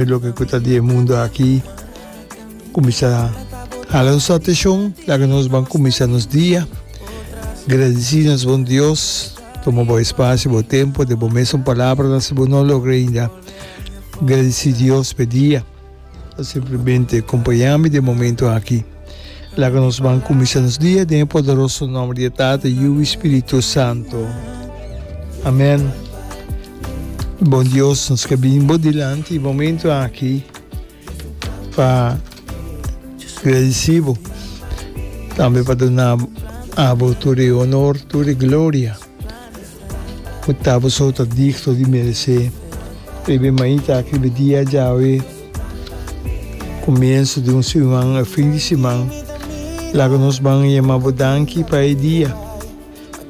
Loke ku ta di e mundu aki kuminsá hala nos atenshon, laga nos ban kuminsá nos dia gradisí nos bon Dios. Tuma bo espacio, bo tempo, den bo mes un palabranan si bo no a logra ainda gradisí Dios p'e dia. Simplemente kompañami den momento aki. Laga nos ban kuminsá nos dia den e poderoso nòmber di e Tata, Yu i Spiritu Santu. Amèn. Bon Dios, nos ke bini Bo dilanti e momentu aki pa gradisí Bo, tambe pa duna Abo tur e onor, tur e gloria. Ku ta bo so ta digto di meresé e bemaita aki be dia djawe kumienso di un siman o fin di siman. Laga nos ban yama bo danki pa e dia.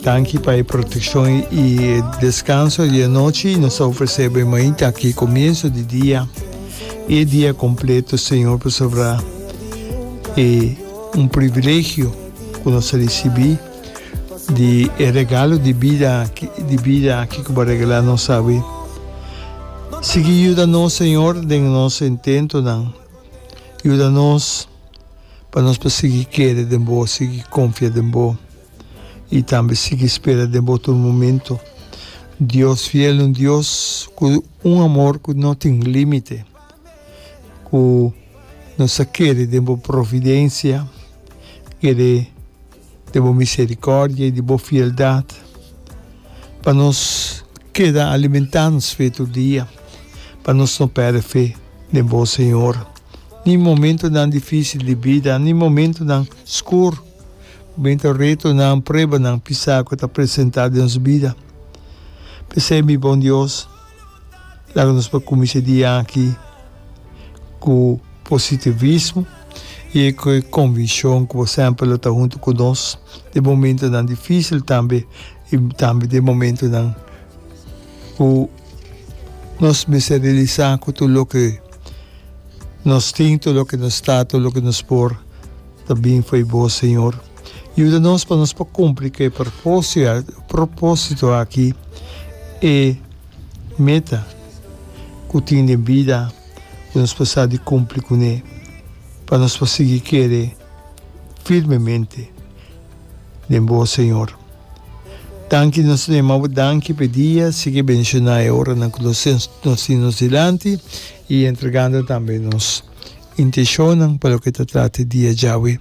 Danki pa e protekshon i e deskanso di anochi. Nos ta ofresé e bemaita aki kumienso di dia i e dia kompleto, Señor, pasobra e un privilegio ku nos a risibí. di e regalo di bida aki, di bida aki ku bo regalá nos awe. Sigui yuda nos, Señor, den nos intentonan. Yuda nos pa nos por sigui kere den bo, sigui konfia den bo i tambe sigui spera den bo tur momento. Dios fiel, un Dios ku un amor ku no tin límite, ku nos a kere den bo providensia, kere. di bo misericordia y di bo fieldad pa nos keda alimenta nos fe tur dia, pa nos no perde fe den bo Señor, ni momentonan dificil di bida, ni momentonan scur, momento retonan, pruebanan pisa cu ta presenta den nos bida. P'esey mi bon Dios. Laga nos por cuminsha dia aki cu positivismo y e conviccion cu bo semper lo ta hunto cu nos den momentonan dificil tambe y tambe den momentonan cu nos mester realisa cu tur loke nos tin, tur loke nos ta, tur loke nos por ta bin fo'i bo, Señor. Yuda nos pa nos por cumpli cu e propósito aki, e meta cu tin den bida cu nos por sa di cumpli cu ne, pa nos por sigui kere firmemente den bo, Señor. Danki, nos ta yama Bo danki p'e dia, sigui bendiciona e oranan cu nos tin nos dilanti y entregando tambe nos intencionnan pa loke ta trata e dia djawe.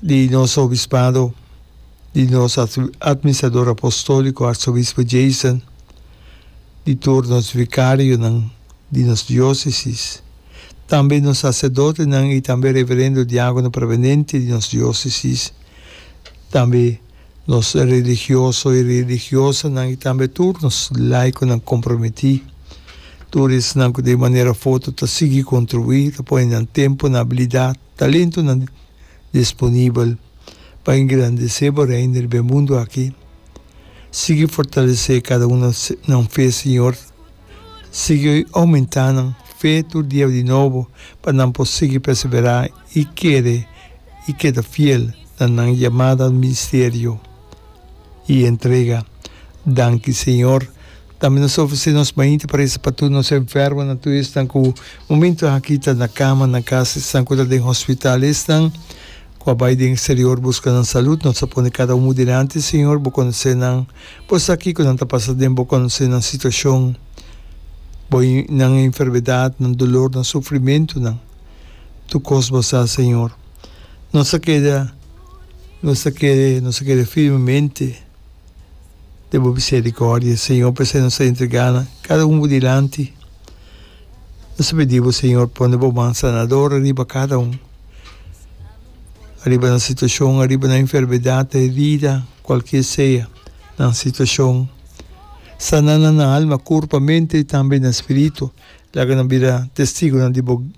di nos obispado, di nos Administrador Apostolico Arzobispo Jason, di tur nos vicarionan di nos diocesis, tambe nos sacerdotenan y tambe Reverendo Diagono Prevenente di nos diocesis, tambe Nos religioso i religiosanan i tambe tur nos laikonan komprometí, tur esnan ku ta e manera foto ta sigui kontribuí, ta pone nan tempu, nan abilidat, talentunan disponibel pa engrandesé bo Reino riba e mundu aki. Sigui fortalesé kada un nan fe, Señor. Sigui oumentá nan fe tur dia di nobo pa nan por sigui perseverá i kere i keda fiel na nan yamada al ministerio i entrega. Danki, Señor. Tambe nos ta ofresé nos mainta pa resa pa tur nos enfermonan, tur esnan ku momentu aki ta na kama nan kas, esnan ku ta den hospital, esnan ku a bai den eksterior buska nan salud. Nos ta pone kada un dilanti, Señor. Bo konosé nan. Bo sa kiko nan ta pasa den. Bo konosé nan situashon, bo, nan enfermedat, nan dolor, nan sufrimentunan. tu kos bo sa, Señor. Nos a keda, nos a kere, nos a kere firmemente den bo miserikòrdia, Señor. P'esei nos ta entregá nan kada un bo dilanti. Nos ta pidi bo, Señor, pone bo man sanador ariba kada un, ariba nan situashon, ariba nan enfermedat, herida, kualke sea nan situashon. Sana nan na alma, kurpa, mente i tambe na spiritu. Laga nan bira testigunan di bo.